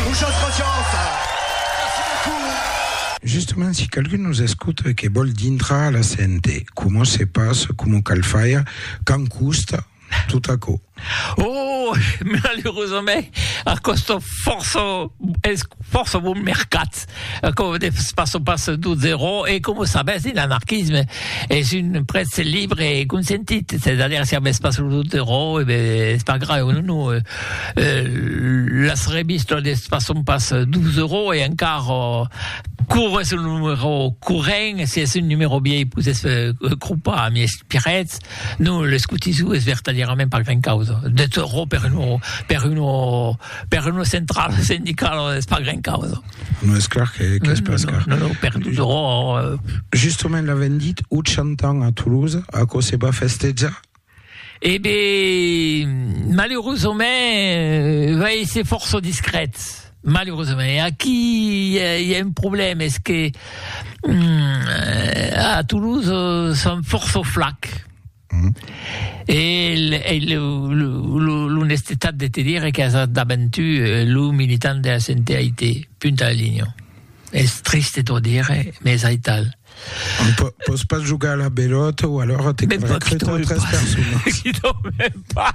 Muchas gracias! Merci beaucoup! Justement, si qualqu'un nos escota e que vòl dintrar a la CNT, coma se passa, coma cal faire, quand costa, tot aquò? Oh! Malerosament, a còsta fòrça, es fòrça bon mercat. Aquò de pas o pas d'o zerò e com o sabètz de l'anarquisme es un prètz libre e consentit, c'est a dire si avètz pas lo zerò e ben es pas grave o non o las revistas de pas o pas d'o zerò e encar o quau es lo numero corrent si es un numero vièlh posètz crompar a mies piretz non l'escotisou es vertadièrament pas gran causa de zerò per un per un o Per una centrala sindicala es pas gran causa. Non es clar qu'es pas car. Non, non, per tot ro... Justament l'avèm dit 80 ans a Toulouse, aquò se va festejar? E ben, maleurosament, va èsser fòrça discret, maleurosament. E aquí i a un problèma, es que a Toulouse son fòrça flacs. Mm. E, e l'onestetat de te dire que as daventu eh, lo militant de la CNTIT, punt a la linha. Es triste t'ho dire, mais aital. On peut, peut pas jugar à la belote ou alors t'es recruté tres personnes. Qui t'en pas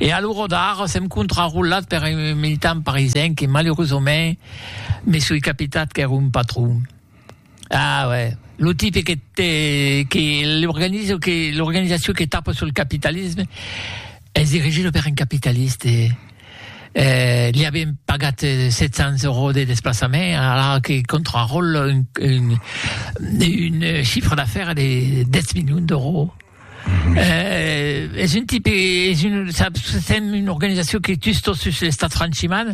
E a lo rodar, sèm contrarolat per un militant parisenc que malerosament me soi capitat qu'ère un patron. Ah uè, lo tipe que te que l'organizo que l'organizacion que tapa sul capitalisme es dirigida per un capitaliste. Eh li avien pagat 700 euros de desplaçament alara que contraròla un un un chiffre d'affaires de 10 milions d'euros. Eh, es un tipe, es un, saps, sèm una organizacion que tus tot sus l'estat franchiman,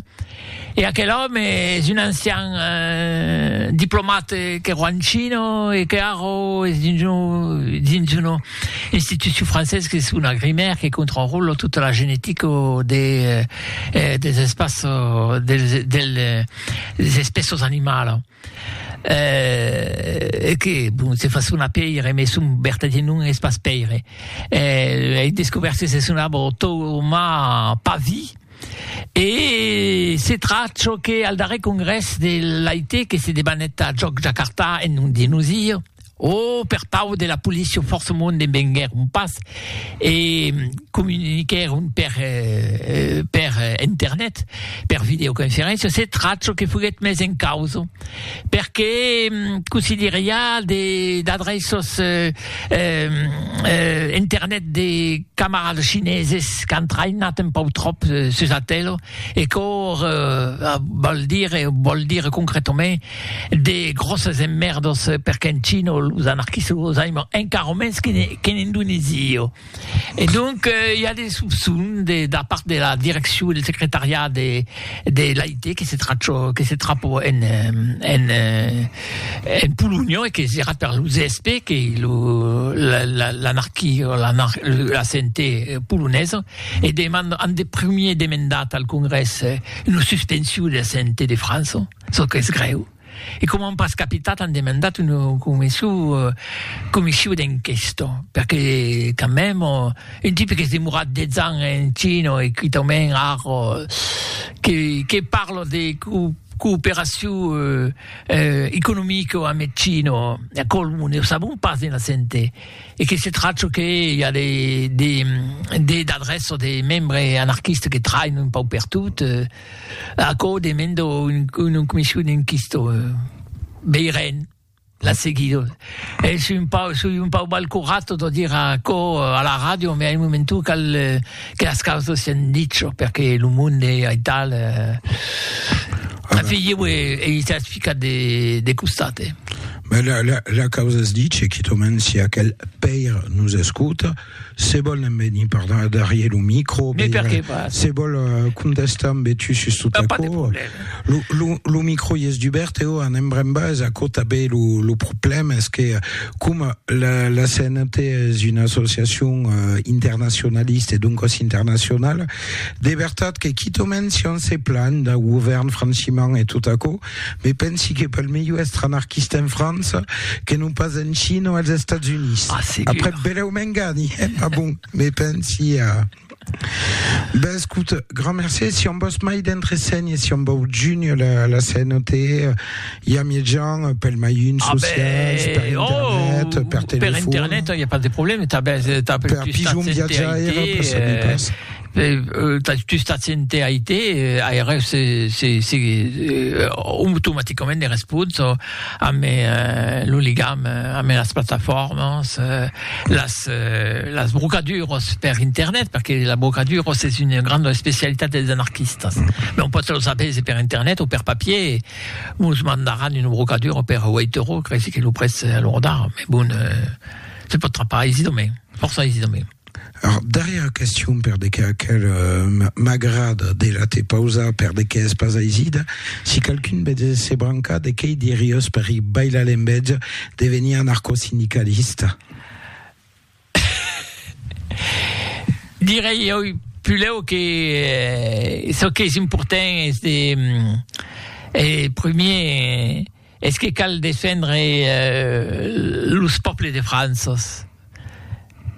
e aquel òme es un ancian eh, diplomat que ro en China e que ara es dins un, dins una institucion francés qu'es una grimèr que contròla tota la genetica de, eh, des espaços, dels, del, des espèços animalas. Eh, e que, bon, se fa sonar pèire, mès son vertadièr nom es pas pèire. Eh, ei descobèrt que se sonava Thomas Pavie, e se trach çò que al darrèr congrès de l'AIT, que se debanèt a Jòc Jakarta en nom de nosir, O per pau de la policia fòrçamont ne venguèron pas e comuniquèron per per internet, per videoconferéncia, se tracho que foguèt mes en causa, perque cossí dire i a de d'adreços internet de camarades chineses qu'an traïnat un pau tròp sus Atelo e quò vòl dire vòl dire concretament De gròsses emmèrdos perque en China los anarquistes los aiman encara mens qu'en Indonèsia. E donc i a de sopçons de da part de la direccion del secretariat de l'AIT que se trachò que se trapò en en Polonha e que serà per lo ZSP que lo l'anarquia o la CNT polonesa e deman an de primièr demandat al Congrès una suspension de la CNT de França. Çò qu'es grèu, e coma an pas capitat an demandat una comission d'enquesta, perque quand même un tipe qu'es demorat 10 ans en China e quitament ara que parla de cooperacion economica amb eth China, aquò ne o sabon pas de naissente, e que se tracha que i a des adrèças de membres anarquistes que trainan un pauc pertot. Aquò demendo un comission inquisto veiren la seguido es un pau soi un pau mal curato de dire aquò a la radio me a un momento cal que las causas sian dicho perque lo monde e ai tal afegir e s'as ficat de de costat eh. Ma la, la, la causa es dice, quitament si aquel pair nos escota, Se vol en venir per darrier lo micro, Mais per que pas? se vol euh, contestar en betu sus tot T'as pas de aquò. problème. Lo, lo, lo micro i es dubèrt e o anem brèn bas, aquò tanben lo, lo problème es que coma la, la CNT es una associacion euh, internacionalista e doncas internacionala, de vertat que quitament si on se planh dau govèrn franchiment e tot aquò, Me pensi que pel melhor èstre anarquista en França que non pas en China o als Estats Units. Ah, segur. Après, belèu m'engani, eh? Ma bon, me pensi a... Ben, escut, grand mercé. Si on vòs mai d'entresenhes, si on vòu junir la, la CNOT, i a miei gens, pel mai un Ah, socials, per ben, oh, internet, per per telefon. internet, il n'y a pas de problème. T'as, ben, t'as per plus ta pigeon CNT, viatjaire, per ça, mi eh, pas. tu stats en TIT, aireu se, se, se, automaticament de respons amb eh, lo ligam amb las plataformas, las, las brocaduras per internet, perque la brocadura es una granda especialitat dels anarquistas. Non pòt los avèse per internet o per papier, mos mandaràn una brocadura per Waytoro, creisi que lo prètz a lo rodar, me bon, se pòt trapar aisidament, fòrça aisidament. Ar darrièra question per de qué aquel m'agrada de la te pausar per de qué es pas aisida, si qualqu'un betz se brancar de qué i diriós per i bailar l'enbetz de venir anarcosindicalista? Direi oi pulèu que çò qu'es important es de primier Es que cal defendre los pòples de Franças.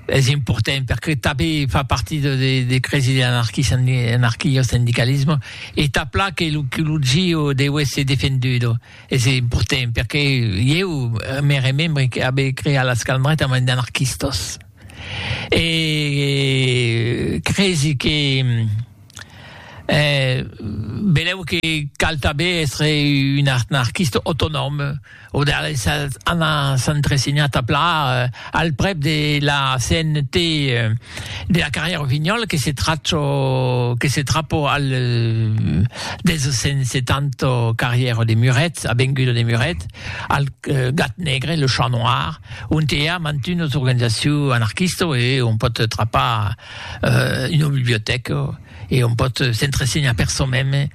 Es important perque tanben fa parti de cresi de l'anarquio-sindicalismo e tap la que lo gio deu èsser defendudo. Es important perque ieu me remembre que abe creat las calmretas amb d'anarquistas e cresi que E benlèu que cal tanben èstre un anarquista autonòm o de anar s'entresenhar tà plan al prèp de la CNT de la carrièra Rossignol que se tracho que se trapo al 270 carrièra de Muret, avenguda de Muret, al Gat Negre, le Chat Noir, ont i a mantunas organizacions anarquistas e on pòt trapar euh, una bibliotèca e on pòt s'entresenhar per çò meme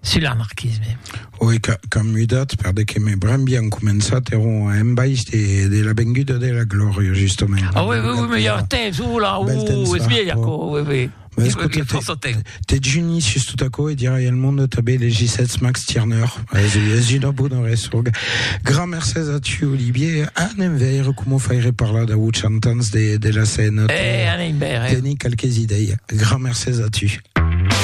sul anarquisme. Oi, qu'an mudat, per de que me bram bien començat, eron a embaish de, de la venguda de la glòria, justament. Ah oui, oui, oui, me ja temps, oula, uh, es vieja, oui, oui. Mas, Dejuni sus tot aquò e dirai al monde tanben de Gisètz Max Tirneur, es una bona resonga. Grand mercés a tu, Olivier. Anem veire coma faire parlar dau 80 ans de la CNAT. Eh, anem veire. Teni qualques idei. Grand mercés a tu.